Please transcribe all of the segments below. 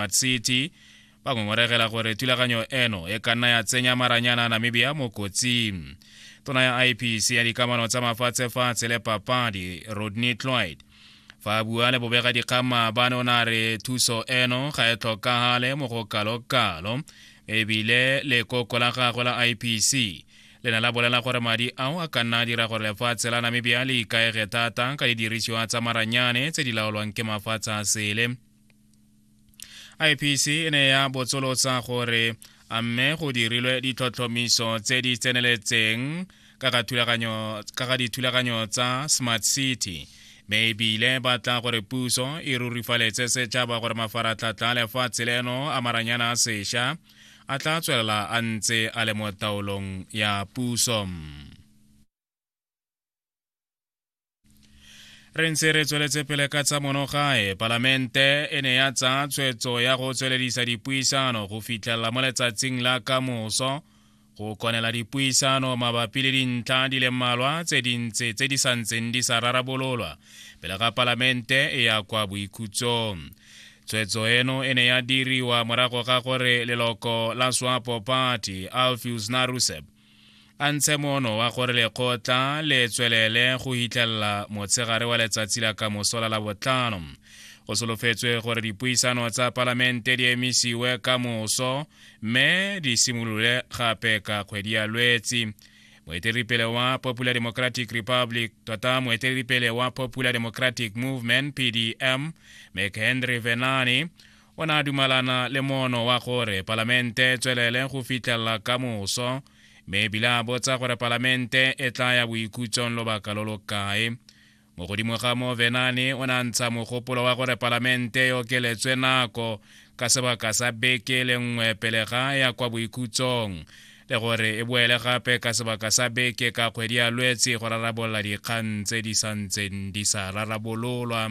Mad City ba ngongoregela gore thulaganyo eno e ka nna ya tsenya maranyana Namibia mo kotsing tona ya IPC ya dikamano tsa mafatshefatshe le papadi Rodney Cloyd fa a bua le bobega dikgang maabane o ne a re thuso eno ga e tlhokagale mo go kalokalo ebile lekoko la gagwe la IPC le ne la bolela gore madi ao a ka nna a dira gore lefatshe la Namibia le ikaege thata ka didirisiwa tsa maranyane tse di laolwang ke mafatshe a sele ipc e ne ya botsolotsa gore a mme go dirilwe ditlhotlhomiso tse di tseneletseng ka ga dithulaganyo tsa smart city mme ebile ba tla gore puso e rurifaletse setšhaba gore mafaratlhatlha lefatshe leno a maranyana a sešwa a tla tswelela a ntse a le mo taolong ya puso re ntse re tsweletse pele ka tsa monogae palamente e ne ya tsaya tshwetso ya go tsweledisa dipuisano go fitlhelela mo letsatsing la ka moso go konela dipuisano mabapi le dintlha di le mmalwa tse dintsi tse di sa ntseng di sa rarabololwa pele ga palamente e ya kwa boikhutsong tshwetso eno e ne ya diriwa morago ga gore leloko la swapo party alfius narusep a ntshe mono wa gore lekgotla le tswelele go hitlhelela motshegare wa letsatsi la ka mosola la botlhano go solofetswe gore dipuisano tsa palamente di emisiwe ka moso mme di simolole gape ka kgwedi ya lwetsi moeteledipele wa popular democratic republic tota moeteledipele wa popular democratic movement pdm mchenry venani o ne a dumalana le mono wa gore palamente e tswelele go fitlhelela ka moso mme ebile a botsa gore palamente e tla ya boikhutsong lobaka lo lo kae mo godimo ga moo venane o ne a ntsha mogopolo wa gore palamente e okeletswe nako ka sebaka sa beke le nngwe pele ga ya kwa boikhutsong le gore e boele gape ka sebaka sa beke ka kgwedi ya lwetse go rarabolola dikgang tse di santseng di sa rarabololwa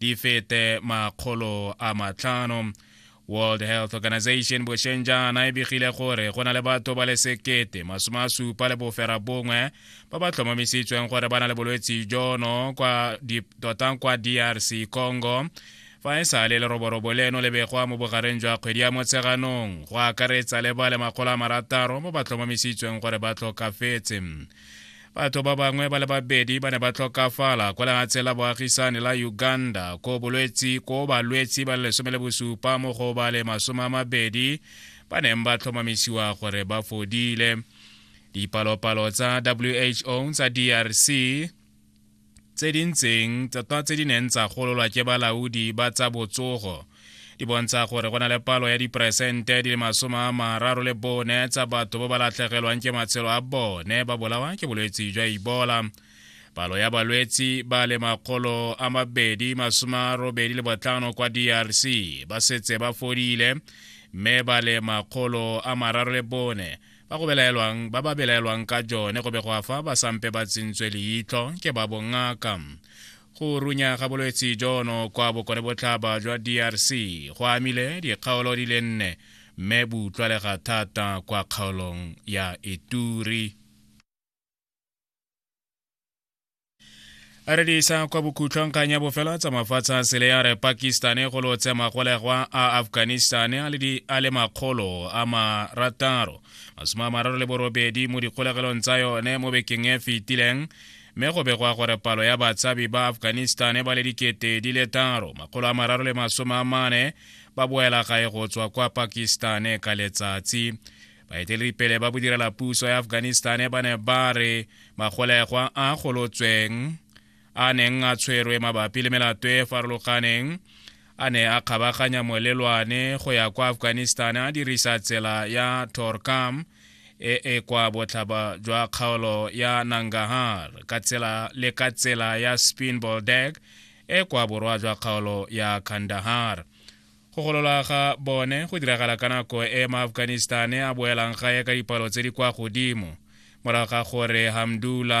di fete makgolo a matlhano world health organization bošeng jaana e begile gore go na le batho ba le sekete masome a supa le bofera bongwe ba ba tlhomamisitsweng gore ba na le bolwetse jono kwa tota kwa drc congo fa e sa le leroborobo leno le begwa mo bogareng jwa kgwedi ya motsheganong go akaretsa le ba le makgolo a marataro mo ba tlhomamisitsweng gore ba tlhokafetse batho ba bangwe ba le babedi ba ne ba tlhokafala kwa lenatshe la boagisane la uganda ko bolwetsi ko balwetsi ba le lesome le bosupa mo go ba le masome a mabedi ba neng ba tlhomamisiwa gore ba fodile dipalopalo tsa who tsa drc tse di ntseng tse di neng tsa gololwa ke balaodi ba tsa botsogo di bontsha gore go na le palo ya diperesente di le masome a mararo le bone tsa batho ba ba latlhegelwang ke matshelo a bone ba bolawa ke bolwetsi jwa ibola palo ya balwetsi ba le makgolo a mabedi masome a robedi le botlhano kwa drc ba setse ba fodile mme ba le makgolo a mararo le bone ba go belaelwang ba ba belaelwang ka jone go be go afa ba sampe ba tsentswe leitlho ke ba bongaka go runya ga bolwetse jono kwa bokone botlhaba jwa drc go amile dikgaolo di le nne mme bo utlwalega thata kwa kgaolong ya ituri re di isa kwa bokhutlhong kgang ya bofela tsa mafatshe a sele ya re pakistane go lotshe magolegwa a afghanistane a le makgolo a marataro masome a mararo le borobedi mo dikgolegelong tsa yone mo bekeng e fetileng mme go begwa gore palo ya batshabi ba afghanistane ba le dikete di le taro makgolo a mararo le masome a mane ba boela gae go tswa kwa pakistane ka letsatsi baeteledipele ba bodirela puso ya afghanistan ba ne ba re magolegwa a golotsweng a neng a tshwerwe mabapi le melato e farologaneng a ne a kgabaganya molelwane go ya kwa afghanistan a dirisa tsela ya torkam e e kwa botlhaba jwa kgaolo ya nangahar ka tsela le ka tsela ya spinboldeg e kwa borwa jwa kgaolo ya kandahar go golola ga bone go diragala ka nako e maafghanistane a boelang gae ka dipalo tse di kwa godimo morago ga gore hamdula